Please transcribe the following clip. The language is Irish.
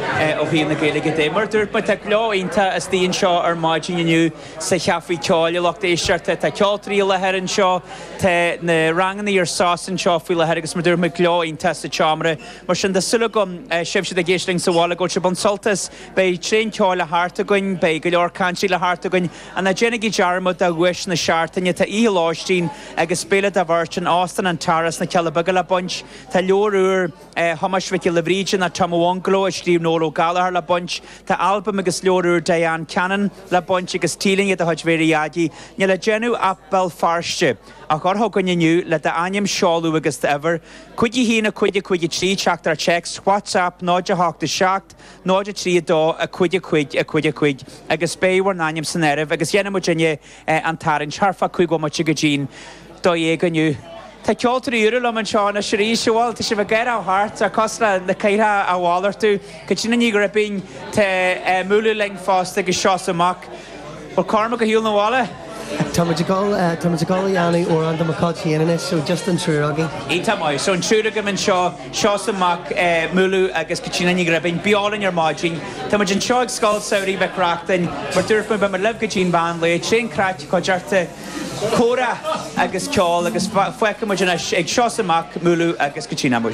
ó thaobh na Gaeilge de. Mar a dúirt mé, tá gleo iontach istigh anseo ar maidin inniu sa Chafé Ceoil i Lucht Éisteachta. Tá ceoltóirí i láthair anseo, tá na rangannaí ar sos anseo faoi láthair agus mar a dúirt mé gleo iontach sa tseomra. Mar sin tá súil agam sibh siúd ag éisteacht linn sa bhaile go bhfuil sibh ag baint sult as. Beidh tréan ceoil le theacht againn, beidh go leor cainteoirí le theacht againn. Ná déanaigí dearmad de dhuais na seachtaine, tá oíche lóistín agus béile do bheirt in Óstán an Tara sna Cealla Beaga le baint. Tá leabhar úr. Thomáis Mhic Giolla Bhríde nó Tom Owonglo, a scríobh Noel Ó Gallchóir, le baint. Tá albam agus leabhar úr Diane Cannon le baint, agus T-léine de chuid Mhary Aggie. Níl le déanamh ach Béal Feirste, a chur chugainn inniu, le d'ainm, seoladh agus d'uimhir, cúig a haon a cúig a cúig a trí, teachtaireacht WhatsApp 0 8 7 0 3 2 a cúig a cúig a cúig a cúig agus beidh bhur n-ainm san áireamh agus dhéanfaimid an an tarraingt thar fá cúig bhomaite go dtí'n dó dhéag inniu. Tá ceoltóirí úra liom anseo anois arís, bhuel, tá sibh ag athrú thart, cosúil le na cathaoireacha a mhalartú, Caitríona Ní Ghribín, tá Múlú linn fosta agus Seosamh Mac, an bhfuil Cormac ar shiúl na bhaile. Tá muid ag dul, tá muid ag dul a dhéanamh amhrán do mo Chailtín anois, so just an triúr againn. Tá go maith, so an triúr agaibh anseo. Seosamh Mac, Múlú agus Caitríona Ní Ghribín. Beo linn ar maidin. Tá muid anseo ag Scoil Samhraidh Mhic Reachtain. Mar dúirt mé, beimid libh go dtí an mheán lae. Tréan craic, cuideachta, comhrá agus ceol agus fágfaidh muid anois ag Seosamh Mac, Múlú agus Caitríona.